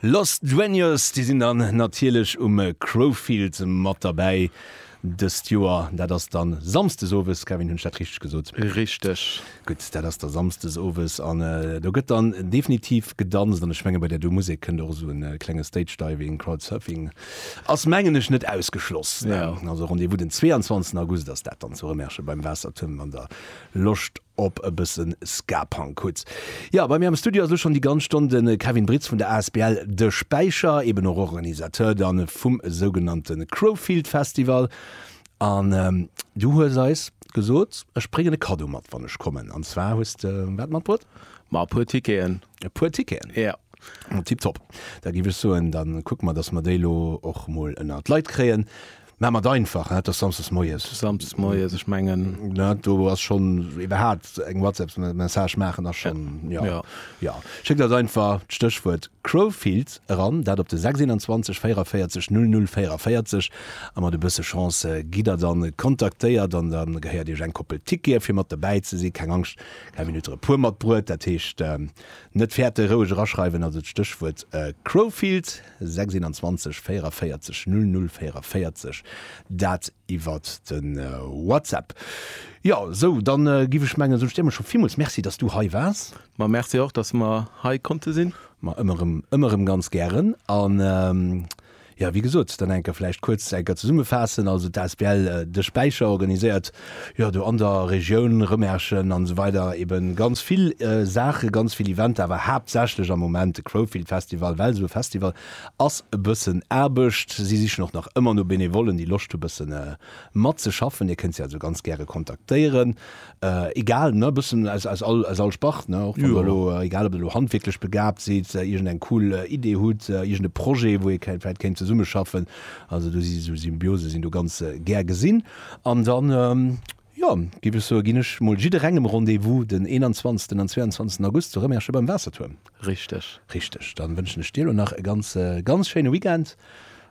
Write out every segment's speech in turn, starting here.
Los Dueños, déi sinn dann natierlech um Crowfield mat derbäi dëst Joer. Dat ass dann Samsdes owes, Kevin, hunn ech dat richteg gesot? Richteg. Gutt, dat ass da Samsdes owes an do gëtt dann definitiv gedanzt an ech menge bei där do Musek kënnt och esou e klenge Stage Diving, Crowd Surfing ass mengen ech net ausgeschloss. Also Rendez-vous den 22 August ass dat dann zu Rëmerschen beim Waassertuerm an der Loscht op e bëssen Ska-Punk hutt? Jo, bei mir am Studio ass elo schonn déi ganz Stonn de Kevin Britz vun der asbl De Späicher, eben och Organisateur dann vum sougenannte Crowfield Festival. An du hues eis gesot, ech bréngen e Kaddo mat, wann ech kommen. An zwar hues de wat matbruet? Ma e puer Ticketen. E puer Ticketen? Jo. Tipptopp. Da géif ech soen, da kucke mer, dass mer déi elo och emol ënnert d'Leit kréien. Mä mat einfach, et ass samsdes moies. Samsdes moies, ech mengen. Ne, do ass schonn iwwerhaapt eng WhatsApp-Message maachen ass schonn, ja. Ja. Ja. Schéckt eis einfach d'Stéchwuert Crowfield eran, dat op de 621 44 00 44 a mat e bësse Chance gitt Der dann kontaktéiert an da gehéiert Iech eng Koppel Tickete fir mat dobäi ze sinn. Keng Angscht, keng Minutte e puer matbruet. Dat heescht, net fäerte roueg eraschreiwen, also d'Stéchwuert Crowfield. 621 44 00 44, dat iwwert de WhatsApp. Jo, sou, dann giff ech mengen, soot ech dir emmer scho villmools Merci, dass du hei waars. Ma Merci och, dass mer hei konnte sinn. Ma ëmmer rëm, ëmmer rëm ganz gären. An, jo, wéi gesot, dann enker vläicht kuerz enker zesummefaassen, also d'asbl De Späicher organiséiert jo do an der Regioun Rëmerschen an esou weider eben ganz vill Saachen, ganz vill Eventer, awer haaptsächlech am Moment de Crowfield Festival, well esou e Festival ass e bëssen Aarbecht. Si sichen och nach ëmmer no Benevollen, déi Loscht hu bëssen matzeschaffen. Dir kënnt si also ganz gäre kontaktéieren, egal ne, bëssen aus aus all aus all Spart ne, och wann der elo, egal ob der elo handwierklech begabt sidd, iergend eng cool Idee hutt, iergend e Projet wou ee vläit kéint zesummeschaffen, also do si esou Symbiose sinn do ganz gär gesinn. An dann, jo, giff ech soen, ginn ech mol jidderengem Rendez-vous den 21 an 22 August zu Remerschen beim Waassertuerm. Richteg. Richteg. Dann wënschen ech dir elo nach e ganz, ganz schéine Weekend.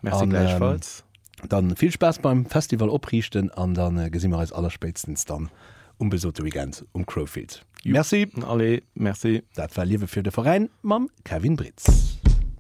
Merci gläichfalls. Dann vill Spaass beim Festival opriichten an dann gesi mer eis allerspéitstens dann um besote Weekend um Crowfield. Merci. Allez, merci. Dat war Liewe fir de Veräin mam Kevin Britz.